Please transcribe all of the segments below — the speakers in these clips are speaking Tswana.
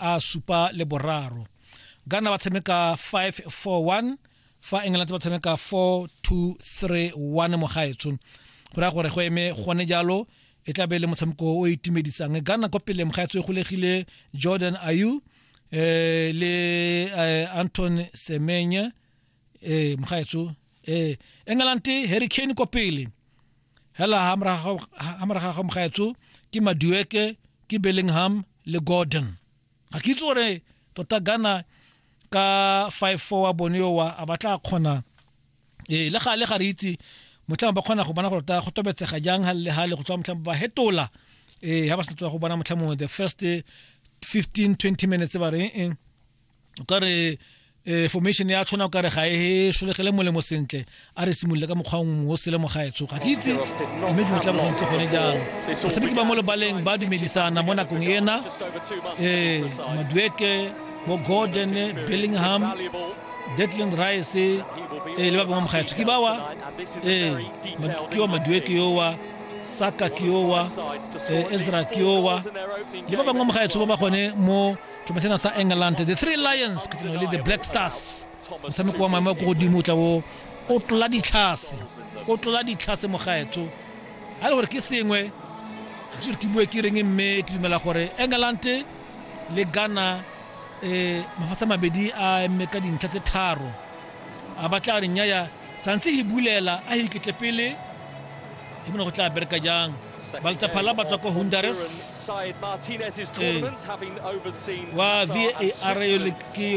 a supa le boraro ghana ba tshameka 541 fa england ba tshameka 4231 mogaetsho go raya gore go eme gone jalo e tla be le motshameko o itumedisang ghana kwa pele mogaetsho e golegile jordan ayu eh, le eh, anton semenye e mgaetso e england harry kane ko pele hela ha moraga ga mgaetso ke madueke ke bellingham le gordon ga ke itse gore tota gana ka 5-4 wa bone owa a batla a kgona ee le gale ga re itse motlhang ba kgona go bona gore ta go tobetsega jang ga le gale go tswa motlhang ba hetola ee ga ba sentse go bona motlhang mongwe the first 15-20 minutes ba reng o ka re eh, formation ya tshwana o ka re ga e solegele molemo sentle a re simolole ka mokgwa mongwe o selemo ga etso ga ke itse mme dilo tla bogong tse gone jalo batshameki ba mo lebaleng ba dumedisana mo nakong ena um madueke bo gordon bellingham detlin rice um le ba bangwe mogaetsho ke bawa um ke wa madueke yowa saka ke yowa um ezra ke yowa le ba bangwe mogaetsho ba ba gone mo thomasena sa england the three lions ka le the black stars motshameko wa maemo ko godimo o tla o o tlola ditlhase o tlola ditlhase mogaetsho ga le gore ke sengwe ga se gore ke bue ke reng mme ke dumela gore england le ghana um mafatshe mabedi a mme ka dintlha tse tharo a batla re nnyaya santse hi bulela a hi ketle pele hi bona go tla bereka jang baltsaphala ba tswa ko honduras wa var yo ke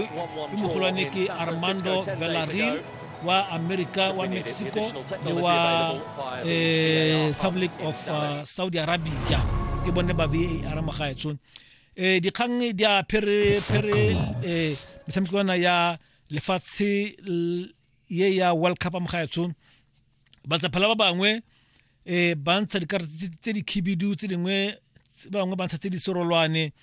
mogolwane ke armando velaril wa america wa mexico le wa eh, republic of uh, saudi arabia ke bone ba var mo gaetsong eh dikgang di a phere phere eh metshamekwana ya lefatshe ye ya world cup mo gaetsho batsaphela ba bangwe um ba ntsha dikarata tse di khibidu tse dingwe ba bangwe ba ntsha tse di serolwane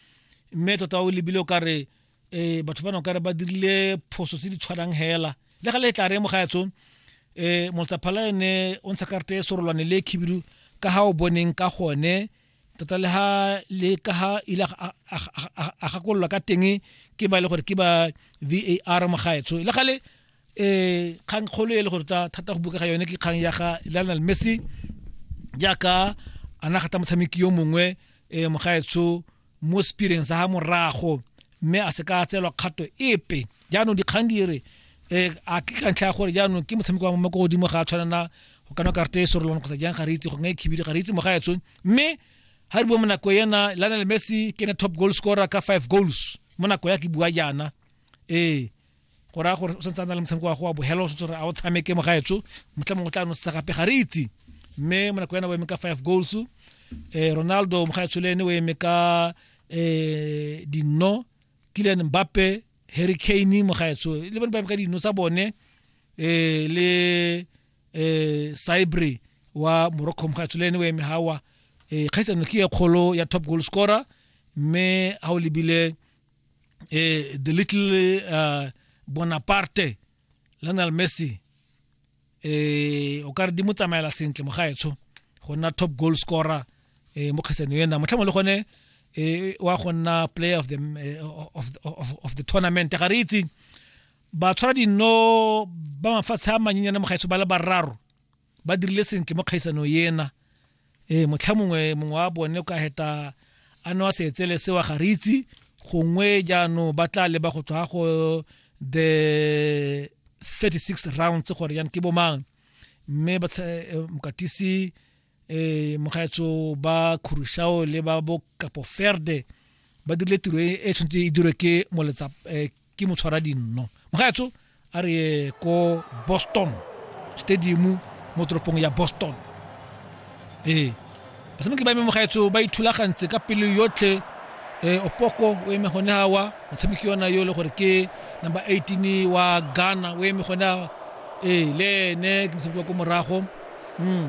mme tota o lebile o kare um batho ba ne o kare ba dirile phoso tse di tshwanang hela le ga le tla re mo gaetsho um motsaphala ene o ntsha karata e serolwane le khibidu ka ga o boneng ka gone tota le ha le ka ha ile a gakololwa ka teng ke ba e le gore ke ba var mogaetsho le gale um kgang kgolo e le gore tota thata go buka ga yone ke kgang ya ga lionel messi jaaka a na gata motshameki yo mongwe um mogaetsho mo spireng sa ga morago mme a se ka tseelwa kgato epe jaanong dikgang di re um a ke ka ntlha ya gore jaanong ke motshameko wa mmako godimo ga a tshwanela go kana karata e sorolwana kgotsa jang ga re itse go nga e khibile ga re itse moga etsong mme ha re bua monako ena Lionel Messi ke ne top goal scorer ka 5 goals monako ya ke bua jana ee go raya gore o santse a na le motshameko wa go wa bohelo o santse gore a o tshameke mo gaetsho motlha mongwe o tla nosetsa gape ga re itse mme mo nako yana o eme ka five goals um ronaldo mo gaetsho le ene o eme ka um dinno kilian mbappe harry kane mo gaetsho le bone ba eme ka dinno tsa bone eh le eh Cybre wa Morocco mokgatso le ene o eme hawa eh kgaisano ke ya kgolo ya top goal scorer mme ha o lebile eh the little uh, Bonaparte Lionel Messi eh o ka re di mo tsamaela sentle mogaetsho go nna top goal scorer eh mo kgaisano ena motlhamo le gone eh wa go nna player of the eh, of, of, of the tournament ga re itse Batshwaradinno ba mafatshe a manyenyane mo gaetsho ba le bararo ba dirile sentle mo kgaisanong ena. Ee, motlha mongwe mongwe wa bone o ka heta a newa seetsele sewa ga re itse gongwe jaanong ba tla leba go tswa go the 36 rounds gore yan ke bomang mme eh, mokatisi eh mogaetso ba Khurusao le ba bo Kapoferde ba dirile tiro e, e tshwanetse e dirwe ke moletsa eh, ke motshwara dinno mogaetso a re ye ko Boston stadium mo toropong ya Boston ee eh, batshameki ba eme mogaetso ba ithulagantse ka pelo yotlhe eh opoko o eme gone hawa motshameki yona yo le gore ke number 18 wa Ghana o eme gone eh le ene ke motshameki wa ko morago Mm.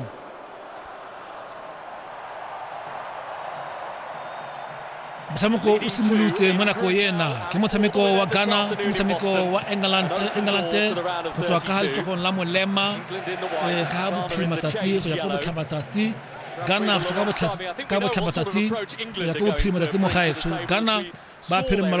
motshameko o simolotse mo nako ena ke motshameko wa ghana ke motshameko wa england england go tswa ka ga letsogong la molema eh, ka bophiri matsatsi go ya ko botlhabatsatsi ghana go tswa ka botlhabatsatsi go ya ko bophiri matsatsi mo gaetsho ghana ba phiri mmala